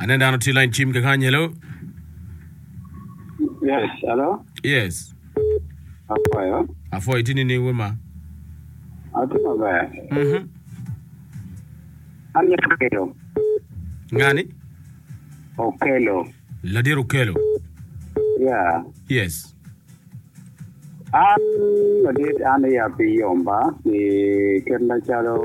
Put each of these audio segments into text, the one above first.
Aneno dano tye lain cim kekany, hello? Yes, hello? Yes. Apoyo. Apoyo, itye nining we ma? Atye maber. Mhm. An Okelo. Ngani? Okelo. Ladit Okello. Yeah. Yes. An ladit an i api yomba ki ket macalo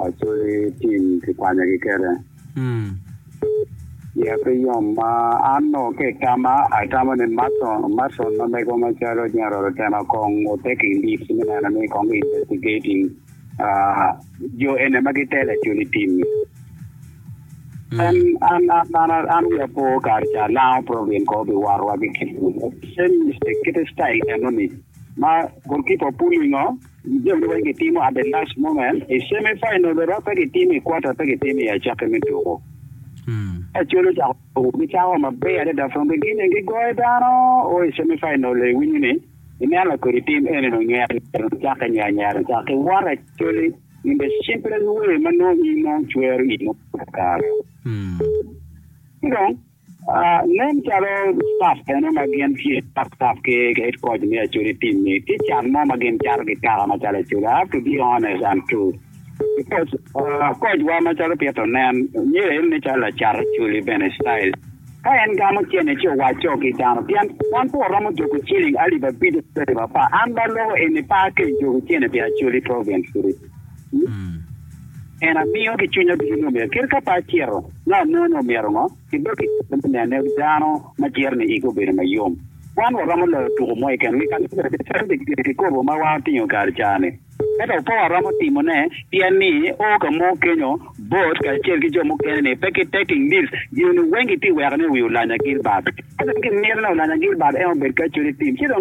acoli tim kikwanyo ki kete. Mm. I api yomba an no ke tama atamo ni Mason Mason ma mego macalo General Otema kong otek i lit me neno ni kong investigating uh, jo ene ma gitelo acoli tim. An, an, an, an, an, an wi apo kare ca lango program ko bi warowa ki kit same mistake kite style enoni ma goalkeeper pullingo jami weng gitimo at the last moment i semi final bero pe gitimo i quarter pe gitimo i acakki me tuko acolo cako tuko gicako maber adada from beginning gigoyo dano o i semi final iwinyo ni ineno kodi tim eni nonywero nyero cake nyero nyero cake what actually In bene cimbre luwer ma nongo in nongo icwero i ngut pa kare. Ci dong, nen calo staf bene ma gin tye staf staf ki head coach me Acholi team ni tye can mo ma gin cato ki taka macalo Acholi. I have to be honest and true because coach wa macalo Pito nen myero en nen calo lacat Acholi bene style. Ka en gamo cene ci owacco ki dano, pien wan pwo romo joko ciling alip abic ki alip apar, an ba loko eni pe ake i joko cene pi Acholi Province kiri. En amiyo ki cwinya ducu ni omyero, kit ka pe acito, nongo anongo ni omyero ngo? Kibed ki kare me nene dano ma ciro ni igi obedo ma yom. Wan waromo loyo tuko mo keken, wi ka lubbe, pi calo kikobo ma wa otingo kare caa-ni. Ento apowa aromo timone pien ni o ka mogo kenyo bot kacel ki jo mukene ni pe kitek i ngic gin-ni weng giti weko ni wi Olanya Gilbert. Ento gimito ni Olanya Gilbert en obed kacel i tim ci dong